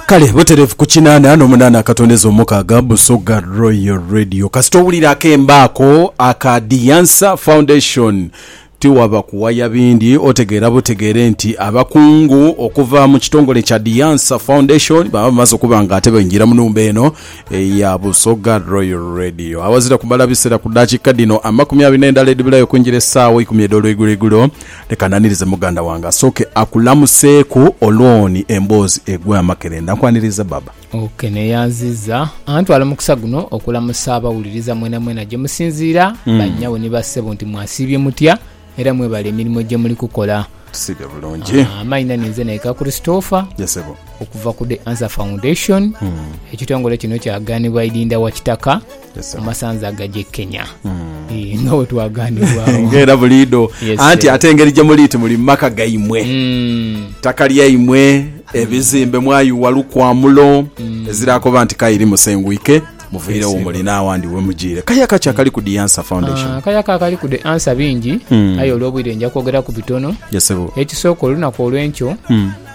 Kale butereevu ku kinaana n'omunaana akatondeza omukaaga, Busoga Royal Radio. Kasita owulira akembo ako aka The Answer Foundation, tiwaba kuwaya bindi, otegeera butegeere nti abakungu okuva mu kitongole kya The Answer Foundation baba bamaze okuba nga ate baingira mu nhumba eno eya Busoga Royal Radio. Awazira kumala biseera ku dakiika dhino amakumi abiri n'endala edhibulayo okwingira essaawa eikumi edh'olweiguloigulo, Leka nanirize muganda wange asooke akulamuseeku olwoni emboozi egwe amakerenda. Nkwaniriza baba. Ok neyanziza antwala omukisa guno okulamusa abawuliriza mwenamwena gyemusinziira ba nnyabo ni ba ssebo nti mwasiibye mutya era mwebale emirimo gyemuli kukola. Tusiibye bulungi. Amaina ninze Naika Christopher Ye sebo. okuva ku The Answer Foundation. Ekitongole kino kyaganibwa Idinda Wakitaka. Yes, sir. amasanza agaje Kenya Eh, nga bwe twaganibwawo nga era buliido Yes, anti sir. ate engeri gye muli nti muli mu maka gaimwe Mm, ttaka lyaimwe ebizimbe mwayiwa lukwamulo ezirakoba nti kairi musengwike muviirewo Yes, muli n'awandi we mugiire kaya kaki akali ku the answer foundation ah, kayaka akali ku the ansa bingi Mm. aye olw'obwire nja kwogera ku bitono yesebo ekisooka olunaku olw'enkyo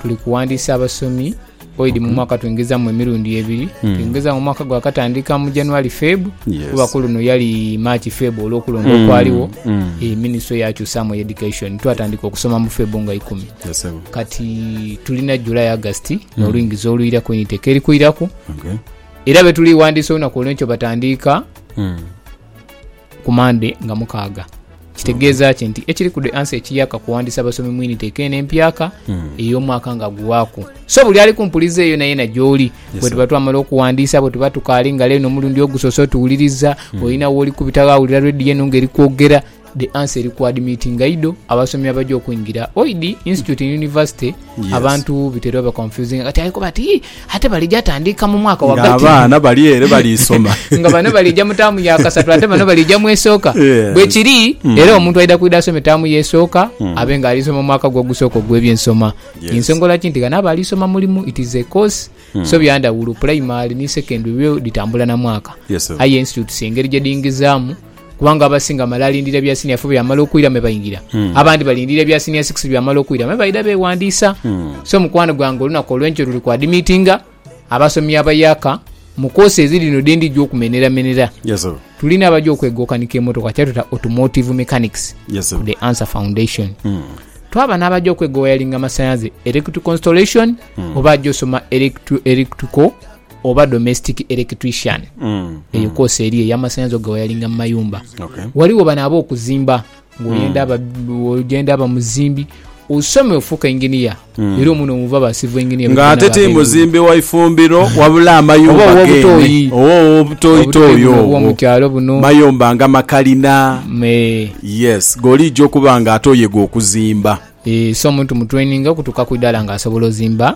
tuli kuwandiisa abasomi Oidi mu mwaka twengezaamu emirundi ebiri. Hmm. Twengezaamu omwaka gwakatandika mu January Feb kuba ku luno yali March Feb olw'okulonda hmm. okwaliwo hmm. eh, minisitule yakyusaamu education twatandika okusoma mu Feb nga ikumi kati tulina July August n'oluingiza olwiraku initeka eri kwiraku era betuliwandiisa olunaku olwenkyo batandiika ku Mande nga mukaaga. Kitegeeza ki nti ekiri ku The Answer ekiyaka kuwandiisa abasomi mu initeka eno empyaka ey'omwaka nga guwaaku? So buli ali ku mpuliza eyo nayena gy'oli, Yes, bwe sir. tuba twamala okuwandiisa, bwe tuba tukaali nga leero omulundi ogusoose otuwuliriza, olina wooli kubita ghawulira radio eno nga eri kwogera, The Answer eri ku admitinga idho abasomi abaja okwingira Oid Institute and University Abantu bitera oba confusinga kati aye kuba ati ate balija tandiika mu mwaka wagati. Nga abaana bali ere bali soma. Nga bano balija mu taamu ya kasatu ate bano balija mu esooka. Bwekiri mm. era omuntu aidha kwidha asome taamu ya esooka mm. abe nga alisoma omwaka gwe ogusooka ogw'ebyensoma. Ensongola ki nti gano aba alisoma mulimu it is a course mm. so byandawulo primary ni secondary byo ditambula na mwaka. Aye institutes engeri gyedingizaamu Kubanga abasinga male alindira ebya siniya fo byamala okwira me baingira. Hmm. Abandi balindira ebya siniya six byamala okwira me baida bewandiisa. Hmm. So mukwano gwange olunaku olwenkyo luli kwa dimitinga abasomi abayaka mu kosi eziri no dendi gyo okumenera menera. Yes sir. Tulina abaja okwegokanika emotoka kyatuta automotive mechanics. Yes sir. The answer foundation. Hmm. Twaba n'abaja okwegowayalinga amasanyaze electrical installation hmm. oba aja osoma electrical oba domestic electrician, eyo koosi eri ey'amasanhalaze ogewayalinga mu mayumba. Ghaligho bano ab'okuzimba, ng'oyenda ogenda aba muzimbi, osome ofuuka inginiya, era omwo no muva ba civil engineer. Ng'ate ti muzimbi wa ifumbiro wabula amayumba geene oba ow'obutoyitoyi obwo, mayumba nga makalina, yes, g'oliija okuba ng'ate oye g'okuzimba. So omuntu mu traininga okutuuka ku idaala ng'asobola ozimba.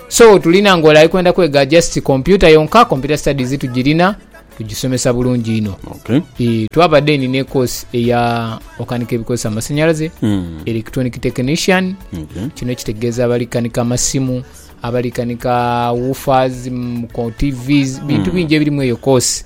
So tulina nga ole ali kwenda kwega just computer yonka, computer studies tugirina, tugisomesa bulungi inho. Okay. Ii, twaba then ne course eya okanika ebikozesa amasanyalaze, Mm. electronic technician, Okay. kino kitegeeza abali kanika amasimu, abali kanika woofers, mm, ko TVs, bintu bingi ebiri mu eyo course.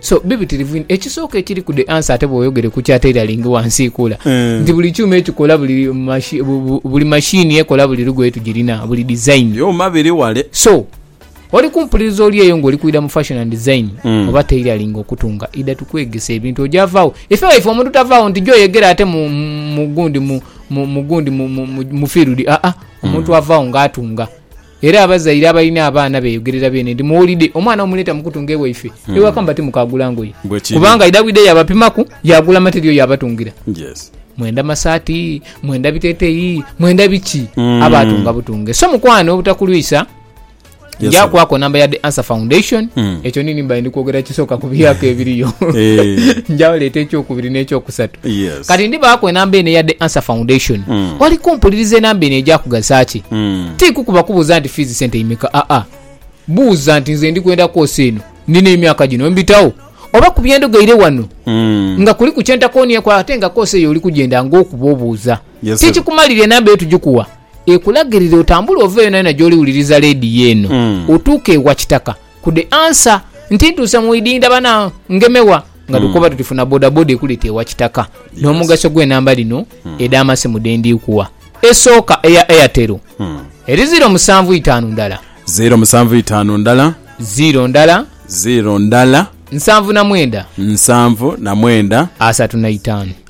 So, bibitirivu inho. Ekisooka ekiriku the answer ate bwoyogere ku kya tailoring wansi kula nti buli kyuma ekikola buli mashi, bu, bu, buli machine ekola buli lugoye tugirina, buli design. Byuma biri wale. So, oli kumpuliriza oli eyo nga oli kwidha mu fashion and design oba tailoring okutunga, idha tukwegese ebintu oja vaagho. Ife waife omuntu tavaagho nti jo oyegere ate mu, mu, mu gundi, mu, mu, mu gundi, mu, mu, mu, mu field, aa, omuntu avaagho nga atunga. Era abazaire abalina abaana beeyogerera beene nti, Muwulidde, omwana wo muleeta mu kutunga ewaife ewaka nga timukaagula ngoye. Kubanga aidha bwidha yaabapimaku, yaagula mate eriyo yaabatungira. Mwenda masaati, mwenda biteteeyi, mwenda biki, aba atunga butunge. So mukwano obutakulwisa, nja kwako namba ya The Answer Foundation. Ekyo ni nimba ndi kwogera kisooka ku byaka ebiriyo. Nja leeta ekyokubiri n'ekyokusatu. Kati ndibaaku enamba eno eya The Answer Foundation. Oli kumpuliriza enamba eno eja kugasa ki? Ti kukuba kubuuza nti fiizi sente imeka, aa. Buuza nti nze ndi kwenda kwosa eno, nina emyaka gino, mbitagho? Oba ku bye ndogeire ghano nga kuliku kye ntakoonyeeku ate nga koosi eyo oli kugyenda ng'okuba obuuza. Ti kikumalira enamba eyo tugikuwa ekulagirire otambule ove yonayona gy'oli wuliriza leediyo eno otuuke ewa Kitaka. Ku the answer nti ntuuse mu idinda bana ngemewa nga tukoba tuti funa bodaboda ekulete ewa kitaka nomugaso gwe namba dhino edha masimu dhendikuwa esooka eya airtel eri ziro musanvu itaanu ndala Ziro musanvu itaanu ndala ziro ndala ziro ndala nsanvu na mwenda nsanvu na mwenda asatu na itaanu.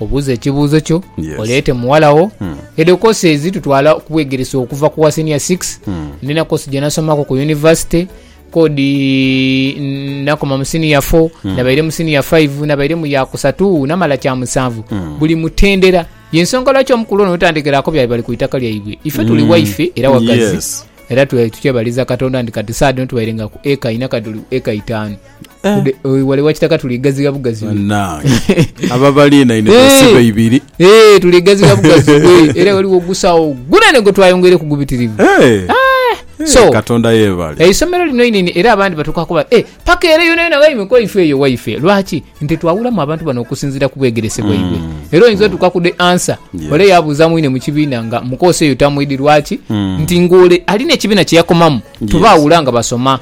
Obuuze ekibuuzo kyo, oleete mughala wo. Edho koosi ezitutwala okubwegeresa okuva ku wa senior six. Ndina koosi gye nasomaku ku yunivasite, kodi nakoma mu senior four, nabaire mu senior five, nabaire mu ya kusatu, namala kya musanvu. Buli mutendera. Y'ensonga lwaki omukulu ono wetandikiraku byali bali ku itaka lyaibwe. Ife tuli waife era wagazi era tukyebaliza Katonda nti kati saadhino tubairenga ku eka ina kati tuli ku eka itaanu. wale wakitaka tuligaziga bugazi banange ababalina ine basiba ibiri eh tuligaziga bugazi era waliwo gusawo gunene gwe twayongeire ku gubitirivu eh ah, so katonda yebale eisomero lino inene era abandi batuka kuba eh paka era yona yona waime kwa ife eyo waife lwaki nti twawulamu abantu bano okusinzira ku bwegerese bwaibwe mm. era oyinza otuka ku de answer yeah. ole yabuza mwine mu kibiina nga mukosa eyo tamwidi lwaki mm. nti ngole alina ekibiina kyeyakomamu yes. tuba awula nga basoma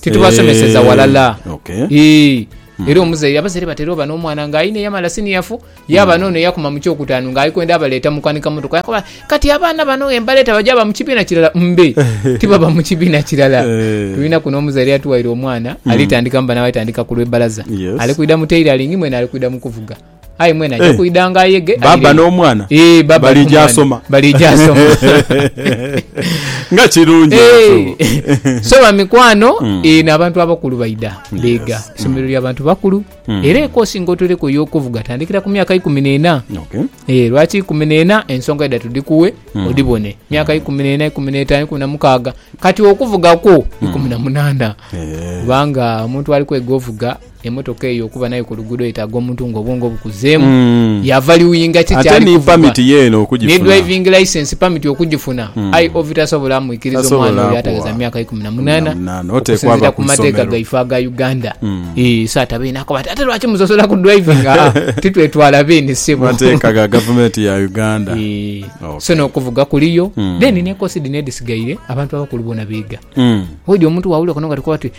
Titubasomeseza walala. Eh, okay. Ii. Hmm. Era omuzaire abazaire batera oba n'omwana nga aine yamala siniyafu yaba hmm. n'ono eyakuma mu kyokutaanu nga alikwenda abaleeta mu kwanika motoka yakoba kati abaana bano embaleeta baja ba mu kibiina kirala mbe tibaba mu kibiina kirala eh. tulina kuno omuzaire yatuwaire omwana hmm. alitandika mubana balitandika ku lw'ebbalaza ali kwida mu tailoring mwene ali kwida mu kuvuga aye mwene aja eh. kwidha nga ayege baba n'omwana eh, balija asoma balija asoma nga kirungi eh. so bamikwano hmm. n'abantu abakulu baidha beega isomero hmm. ly'abantu bakulu hmm. era ekosi ngaotereko yokuvuga tandikira ku myaka ikumi n'ena lwaki ikumi n'ena ensonga idha tudikuwe odibone myaka ikumi n'ena ikumi n'etaano ikumi na mukaaga kati okuvugakwo ikumi na munana kubanga omuntu ali kwega ovuga emotoka eyo okuba nayo ku luguudo yetaaga omuntu nga obwongo bukuzeemu, mm. yavaliwinga ki kyali ni pamiti yeeno okugifuna, ne driving license pamiti okugifuna mm. aye ovi tasobola amwikiriza omwana oyo atageza myaka ikumi na munaana okusinzira ku mateeka gaife aga uganda mm. e, so atabeine akoba ati ate lwaki musosola ku driving ah, titwetwala beene sebo mateeka ga gavumenti ya uganda e, okay. so n'okuvuga kuliyo mm. then nekosi dhino edhisigaire abantu abakulu bona beega mm. oidi omuntu wawulira konoga tikoba ti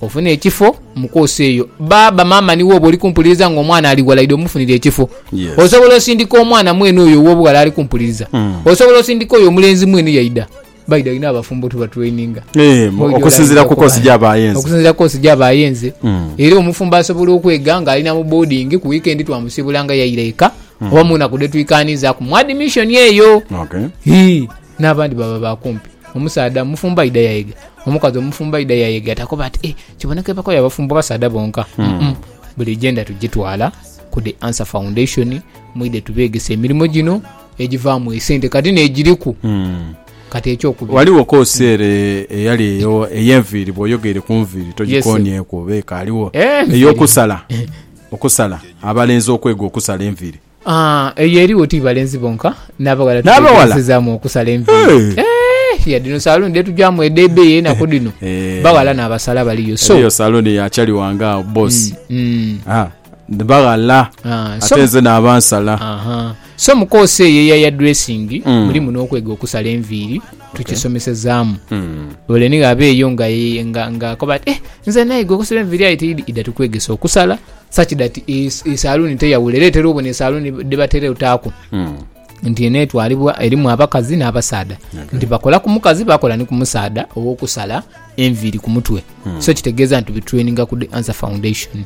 Ofune ekifo mu koosi eyo. Baaba, maama ni wooba oli kumpuliriza ng'omwana ali ghala, idha omufunire ekifo. Osobola osindika omwana mwene oyo ow'obughala ali kumpuliriza. Osobola osindika oyo omulenzi mwene yaidha. Baidha inho abafumbo tubaturaininga. Okusinziira ku koosi gy'aba ayenze. Okusinziira ku koosi gy'aba ayenze. Era omufumbo asobola okwega ng'ali na mu boodingi, ku wiikendi twamusiibula nga yaira eka, oba mu naku dhe twikaanizaaku mu adimishoni eyo. Hii. N'abandi baba ba kumpi. Omusaadha mufumbo aidha yayega, omukazi omufumbo aidha yayega takoba ati, eh, kiboneka ebago ya bafumbo basaadha bonka. Mm-mm. Buli agenda tugitwala ku The Answer Foundation, mwidhe tubeegese emirimo gino egivaamu esente kati n'egiriku. Mm. Kati ekyokubiri. Ghaligho koosi ere eyali eyo ey'enviiri bw'oyogeire ku nviiri togikoonyeku oba ekaaliwo? Eh, enviiri. Ey'okusala, okusala, abalenzi okwega okusala enviiri. Eyo erigho ti balenzi bonka, n'abaghala tubeghenesezaamu okusala enviiri. Yadde dhino saluuni dhetugyamu edh'ebeeyi enaku dhino, baghala n'abasala baliyo. Eriyo saluuni ya chali wange agho bbosi, baghala ate nze naaba nsala. So mu koosi eyo eya yadresingi mulimu n'okwega okusala enviiri, tukisomesezaamu. Ole ni ghaba eyo ng'akoba ati, nze naiga okusala enviiri aye tiidhi, idha tukwegese okusala. Such that esaluuni teyawula era etera obona esaluuni dhebatera otaaku nti eno etwalibwa erimu abakazi n'abasaadha nti bakola ku mukazi bakola ni ku musaadha ow'okusala enviiri ku mutwe so kitegeeza nti tubetraininga ku The Answer Foundation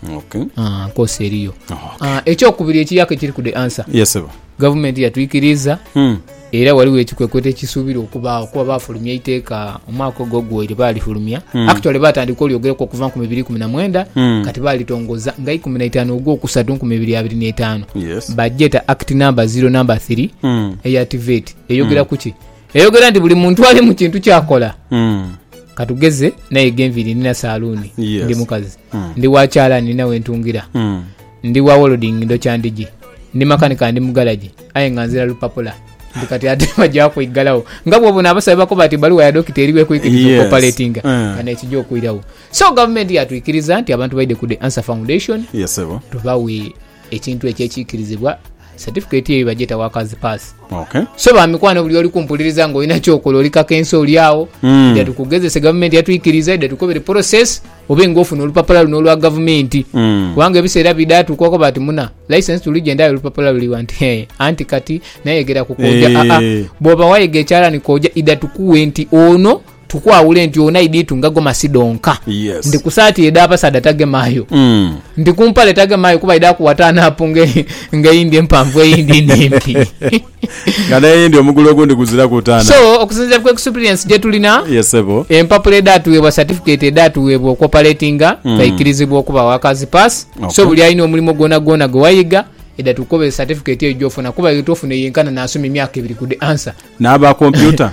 Ah, nkoosi eriyo Ah, ekyokubiri ekiyaaka ekiri ku The Answer Yes, sebo. gavumenti yatwikiriza Era ghaligho ekikwekweto ekisuubirwa okubaagho kuba baafulumya eiteeka omwaka ogwo oguwaire baalifulumya. Mm. Actually baatandika olyogeraku okuva nkumi ibiri ikumi na mwenda Mm. kati baalitongoza nga ikumi na itaanu ogwokusatu nkumi ibiri abiri n'etaanu. Yes. Bagyeta Act Number Zero Number Three Mm. eya TVET. Eyogera ku ki? Eyogera nti buli muntu ali mu kintu kyakola. Mm. Katugeze naye ghenviri nina saluuni, Yes. ndi mukazi, Mm. ndi wa kyalaani nina wentungira. Mm. Ndi wa wolding ndokya ndhigi. Ndi makanika ndi mu garagi aye nga nzira lupapula nti kati ate baja kwigalau nga bwobona abasawo bwebakoba nti baluwa ya dokita eriwo ekwikiriza Yes. okopaletinga Eh. nga nekija okwirawo so gavumenti yatwikiriza nti abantu baide ku the answer foundation Yes, sebo. tubawe ekintu ekyo ekikirizibwa Certificate eyo bagyeta workers pass. Okay. So bamikwano buli oli kumpuliriza nga olina kyokola oli kakensa oli awo mm. ida tukugezese gavumenti yatwikiriza ida tukobere process obe nga ofuna olupapula luno olwa gavumenti mm. kubanga ebiseera bida tukwako bati muna license tuli gyendayo olupapula luliwa nti hey, anti kati nayegera kukoja hey. Eh. aa ah, ah. bwoba wayega ekyalani koja ida tukuwe nti ono Tukwawule nti oona idhitu nga gomasi dhonka Yes. nti kusaati edha basaadha tagemaayo Mm. nti kumpale tagemaayo kuba idha kuwa taanapu nga nga eyindi empanvu eyindi nhimpi Nga n'eyindi omugulu ogundi guziraku taana. so okusinzira ku experience gyetulina Yes, ssebo. empapula edhatuweebwa certificate edhatuweebwa okwopaletinga twaikirizibwa okuba workers pass Okay. so buli alina omulimo gwona gwona gwewayiga edha tukukobera certificate eyo gyofuna kuba eyo twofuna eyenkana nasoma emyaka ebiri ku the answer N'aba kompyuta.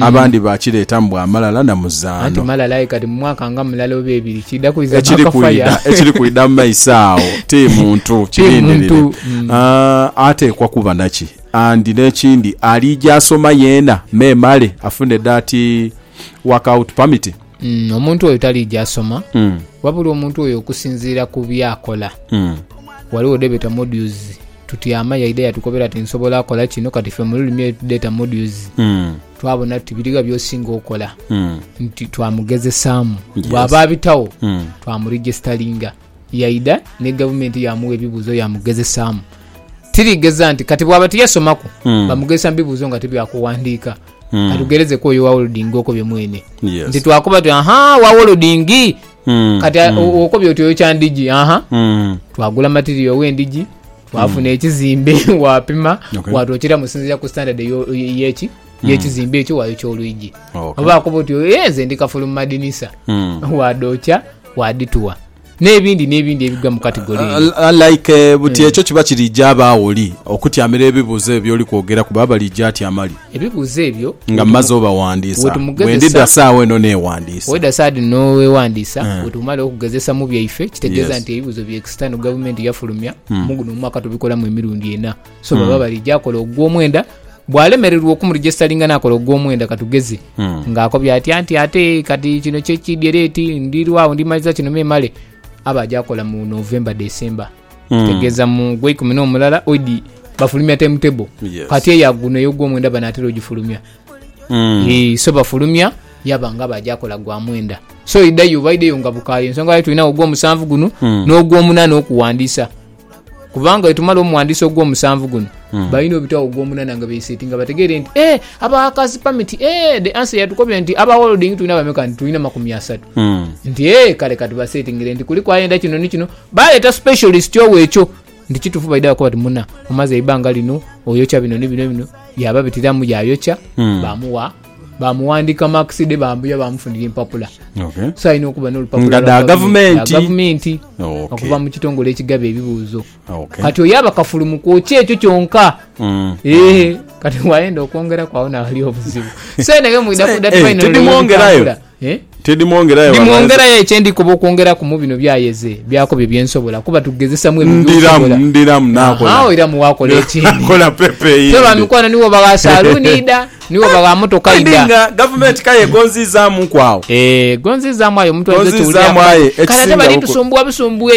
abandi baakireetamu bwa malala na muzaano. Anti malala aye kati mu mwaka nga mulala oba ebiri kiidha kwidha mwaka faya. Ekiri kwidha mu maiso agho ti muntu, kirindirire. Mm. Ateekwa kuba naki? Andi n'ekindi aliija asoma yeena memale afune that workout permit. Mm, omuntu oyo taliija asoma mm. wabula omuntu oyo okusinziira ku byakola mm. waliwo debeta modules tutyama yaida yatukobera ti nsobola akola kino kati fe mululimi data modules mm. twabona ti biriga byosinga okola mm. nti twamugezesaamu yes. bwaba abitawo mm. twamuregistalinga Yaidha ni gavumenti yaamugha ebibuuzo yaamugezesaamu. Tirigheza nti kati bwaba tiyasomaku Mm. bamugezesa mu bibuuzo nga ti bya kughandiika. Mm. Ka tugherezeku oyo owa Wolding okobye mwene. Yes. Nti twakoba tuti, aha, owa Wolding! Mm, Kati a- mm, o- okobye oti oyo kya ndhigi, aha. mm. Twagula material w'endhigi, twafuna ekizimbe, waapima, Okay. waatwokera mu sinziira ku standard eyo- ey'eki Hmm. yekizimbe ekyo wayokya olwiji okay. oba akuba oti eh, nze ndi kafulu mumadinisa mm. wadokya wadituwa nebindi nebindi ebigwa mu kategori uh, uh, uh, like uh, buti mm. ekyo kiba kirija abaawo oli okutyamira ebibuuzo ebyo byoli kwogera kuba balija atyamali ebibuuzo ebyo nga mumaze obawandiisa bwendidda saawa eno newandiisa weda saadi nowewandiisa mm. Eh. wetumala okugezesa mu byaife kitegeeza yes. nti ebibuuzo byekisitano gavumenti yafulumya mm. muguno omwaka tubikolamu emirundi ena so baba balija akola ogw'omwenda bwalemererwa okumuregistalinga nakola ogw'omwenda katugeze ng'akobya atya nti ate kati kino kyekidye leti ndirwawo ndimaliza kino memale aba aja akola mu november december kitegeeza mu gweikumi n'omulala oidi bafulumya timetable Yes. kati eya guno ey'ogw'omwenda banatera ogifulumya Mm. Eh, so bafulumya yaba nga baja akola gwa mwenda so idayo oba ideyo nga bukaaye ensonga lwaki tulinawo ogw'omusanvu guno n'ogw'omunaana okuwandiisa kubanga wetumala omuwandiisi ogw'omusanvu guno hmm. balina obitwao ogw'omunana nga beiseti nga bategeere nti e abakasi pamiti e the answer yatukobye nti abawolding tulina bameka nti tulina makumi asatu hmm. nti e kale katubasetingire nti kuliku ayenda kino ni kino baleeta specialist owo ekyo nti kitufu baida bakuba ti muna omaze eibanga lino oyokya bino ni bino bino yababitiramu yayokya hmm. bamuwa bamuwandika marks de bambuya bamufunira empapula okay. so alina okuba nolupapula da gavumenti, gavumenti okay. okuva mu kitongole ekigaba ebibuuzo okay. kati oyo aba kafulu mu kwokya ekyo kyonka mm. e, kati wayenda okwongera kwawo nawali obuzibu so naye mwina kudatmwongerayo Ndimwongerayo aye kye ndikoba okwongeraku mu bino by'ayeze byaku byo bye nsobola, kuba tugezesa mwebyo by'osobola. Agho iramu waakola ekindi. Ffe ba mikwano ni woba gha saluuni idha, ni woba gha motoka idha. Gavumenti k'aye egonziizaamuku agho. Egonziizaamu aye omuntu ayinza okiwulira nga kale ate bali tusumbuwa busumbuwe.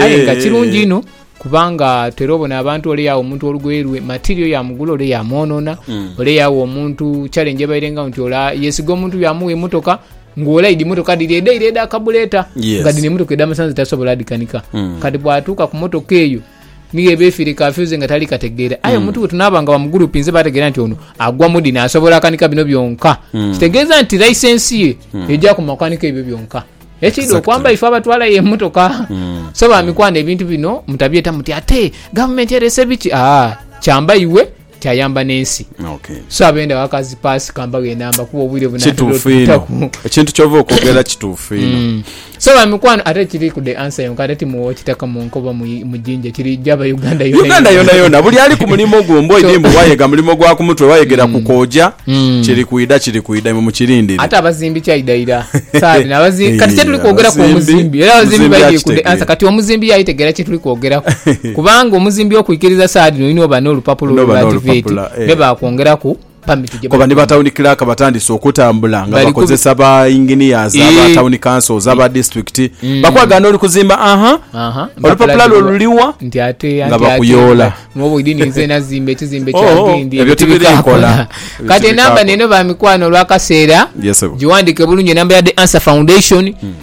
Aye nga kirungi inho. Kubanga tera obona abantu ole yawa omuntu olugoye lwe material yamugula ole yamwonona mm. ole yawa omuntu challenge ebaire nga nti ola yesiga omuntu yamuwa emotoka ng'ola idi motoka diri edaire eda kabuleta yes. nga dino emotoka edamasanze tasobola dikanika mm. kati bwatuuka ku motoka eyo niyo eba efiire kafyuze nga tali kategeera aye mm. omuntu wetunaba nga bamugurupinze bategeera nti ono agwa mudi nasobola akanika bino byonka mm. kitegeeza nti licensi ye mm. eja ku makanika ebyo byonka Ekidha okwamba ife abatwalayo emotoka mm. so bamikwano ebintu bino mutabyeta muti ate gavumenti erese biki aa kyamba iwe kyayamba nensi okay. so abenda wakazi pasi kambaga enamba kuba obwire bunakituufu ekintu kyova okwogera kituufu ino mm. so bamikwano ate kiri ku the answer yonka ate timuwa okitaka munkoba mujinja kiri jaba Uganda yona Uganda yona yona buli ali ku mulimo gwo mbo idi mbu wayega mulimo gwa kumutwe wayegera ku koja mm. kiri kwida kiri kwida imwe mukirindire ate abazimbi kyaida ira sabi na bazimbi kati kyetuli kwogera ku omuzimbi era abazimbi baidi ku ansa kati omuzimbi yayitegera kyetuli kwogera ku kubanga omuzimbi okwikiriza saadi no ino oba no lupapula olwo bativeti eh. ne bakwongera ku Kuba ni ba Town Clerk batandise okutambula nga bakozesa ba Engineers, aba eh. Town Councils, aba mm. District. Mm. Bakwaga noli kuzimba, aha. Olupapula lwo luliwa? Nti ate nga bakuyoola. Mwobo idi ninze nazimba ekizimbe oh, kyange oh, ndi. Ebyo tibirikola. Kati enamba neno ba mikwano olwakaseera. Yes, Giwandike bulungi enamba ya The Answer Foundation. Mm.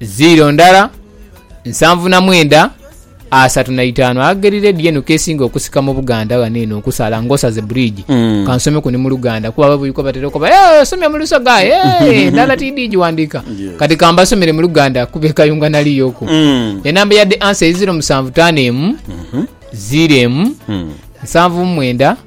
Ziiro ndala, nsanvu na mwenda, asatu na itaanu. Ageri lady eno kesinga okusika mu Buganda ghano eno okusala nga osaze bridge. Mm. Kansomeku ni mu Luganda kuba babuliko batera okoba eh osomye mu Lusoga eh ndala tidi giwandika. Yes. Kati kambasomere mu Luganda kuba e Kayunga naliyo oku. Mm. Enamba ya the answer ye ziro musanvu taano emu, ziro emu, nsanvu mu mwenda,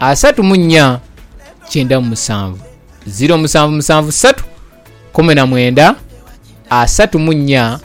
asatu mu nnya kyenda mu musanvu ziro musanvu musanvu satu kumi na mwenda asatu mu nnya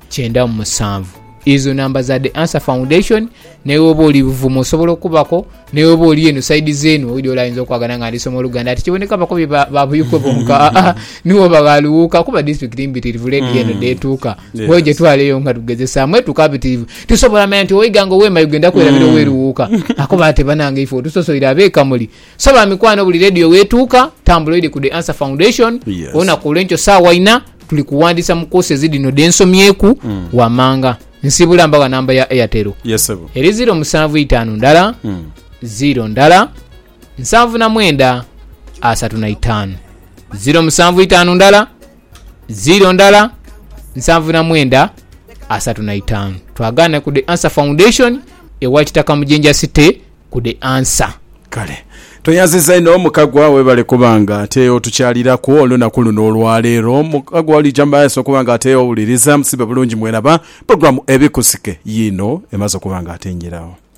kyenda mu musanvu ezo namba za the answer foundation newoba oli buvumu osobola okubako newoba oli eno saidi zenu oli oli ayinza okwagana nga ndisoma oluganda ati kiboneka bakobi ba- babuyikwe bonka Ah, ah, niwoba ghaluwuuka kuba district mbitirivu ledi eno detuuka Yeah. hoje twaleyo nga tugezesaamu etuuka bitirivu Tusobola manya nti oiga nga oweema yogenda kwerabira mm. oweruwuuka. Akoba ati, Banange ifwe otusosoire ab'e Kamuli. So ba mikwano buli leediyo wetuuka, tambula oire ku The Answer Foundation. Yes. Olunaku olwenkyo saawa ina tuli kuwandiisa mu koosezi dhino dhe nsomyeku mm. wamanga. Nsibula mbawa namba ya Airtel. Yes, Eri ziro musanvu itaanu ndala, mm. ziro ndala, nsanvu na mwenda, asatu na itaanu. Ziro musanvu itaanu ndala, Ziro ndala nsanvu na mwenda asatu na itaanu. Twagaane ku The Answer Foundation ewa Kitaka mu Jinja City ku The Answer. Kale. Tweyanziza inho Mukagwa webale kuba nga ate otukyaliraku olunaku luno olwaleero. Mukagwa olija mumaaso okuba nga ate owuliriza musibe bulungi mweraba program Ebikusike yiino emaze okuba nga ate njiragho.